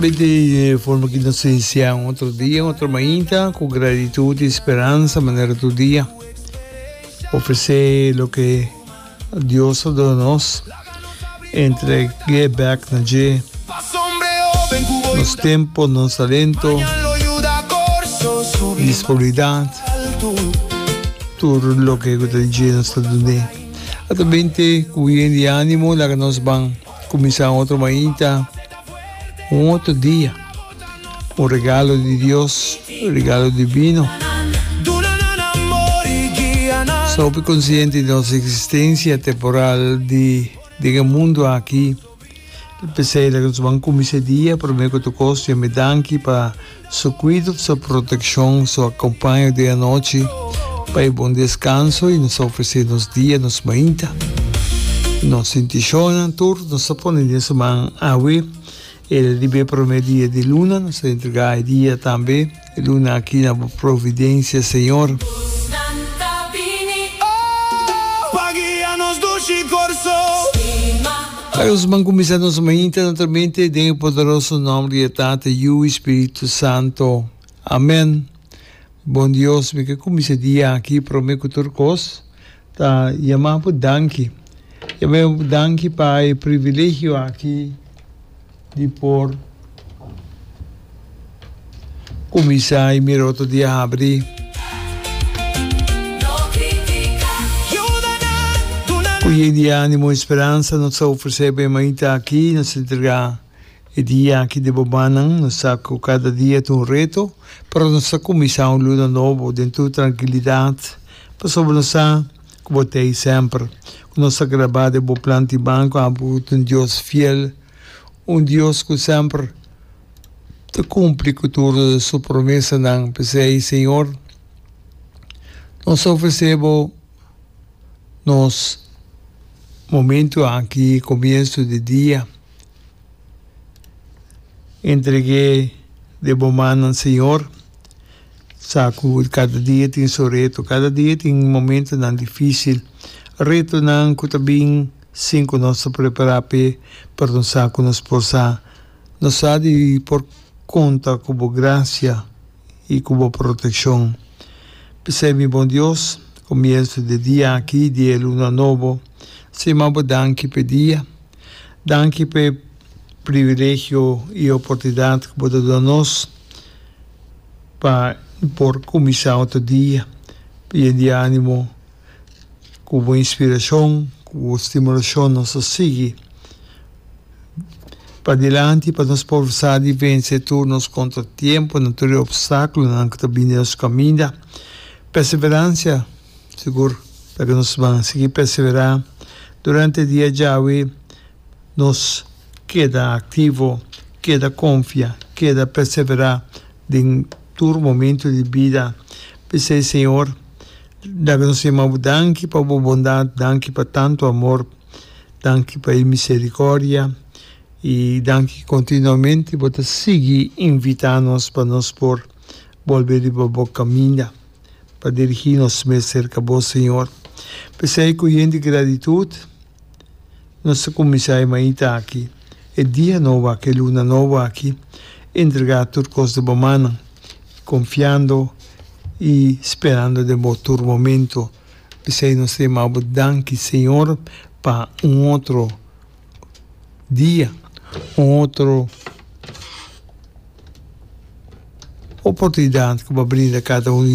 Bete forma ki nos iniciá un otro dia, otro mainta, ku gratitud i speransa manera tur dia. Ofresé loke Dios a duna nos, entreg'é bèk na dje nos tempu, nos talento, disponibilidat, tur loke ku ta di dje nos ta dun'é. Ato binte ku bien di ánimo, laga nos ban. Kuminsá un otro mainta, un otro dia, un regalo di Dios, un regalo divino. Sopi konsiente di nos eksistensia temporal di den e mundu aki, p'esei laga nos ban kumins'é dia promé ku otro kos dj'Am'é danki pa. Su kuido, su protekshon, su akompaña den anochi pa e bon deskanso i nos a ofresé nos dia, nos mainta. Nos sintishonnan tur nos a pone den su man. Awe el a rib'é promé dia di luna, nos a entregá e dia tambe, e luna aki na bo providensia, Señor. Bai nos ban kuminsá nos mainta naturalmente den e poderoso nòmber di e Tata, Yu i Spiritu Santo. Amèn. Bon Dios, mi ke kuminsá e dia aki promé ku tur kos ta yamá bo danki. Yamá bo danki pa e privilegio aki. Di por kuminsá i mira otro di abri. Ku yey di ánimo i speransa nos ta ofresé bo e mainta akí i nos ta entregá e dia akí den bo mannan. Nos sa ku kada dia ta un reto, pero nos ta kuminsá un luna nobo den tur trankilidat, pasobra nos sa Ku bo ta ei semper. Ku nos ta grabá den bo plan di banko abo ta un Dios fiel, un Dios ku semper ta kumpli ku tur Su promesanan. P'esei, Señor, nos ta ofresé Bo nos momentu aki komiensu di dia. Entreg'é den Bo mannan, Señor. Sa ku kada dia tin su reto. Kada dia tin momentunan difísil. Retonan ku ta bin sin ku nos ta prepará p'e, pero nos sa ku nos por sa. Nos sa di por konta ku bo grasia i ku bo protekshon. P'esei mi bon Dios, komiensu di e dia aki, di e luna nobo, siman bo danki p'e dia. Danki p'e privilegio i oportunidat ku bo ta duna nos. Pa por kuminsá otro dia bien di ánimo, ku bo inspirashon, ku bo stimulashon nos a sigui padilanti pa nos por sa di vense tur nos kontratiemponan, tur e opstákulonan ku ta bini den nos kaminda. Pèseveransia, sigur ta ke nos ban sigui pèseverá durante e dia djawe. nos keda aktivo, keda konfia, keda perseverá den tur momentu di bida. P'esei, Señor, da nos e mabu danki pa Bo bondat, danki pa tantu amor, danki pa e miserikòrdia i danki ki kontinuamente Bo ta sigui invitá nos pa nos por bolbe riba Bo kaminda. pa dirigí nos mes serka Bo, Señor. P'esei ku yen di gratitut nos ta kuminsá e mainta aki, e dia nobo aki, e luna nobo aki, entregá tur kos den Bo mannan, konfiando i sperando den Bo tur momento. P'esei nos ta yama Bo danki, Señor, pa un otro dia, un otro oportunidat ku Bo a brinda kada uno di.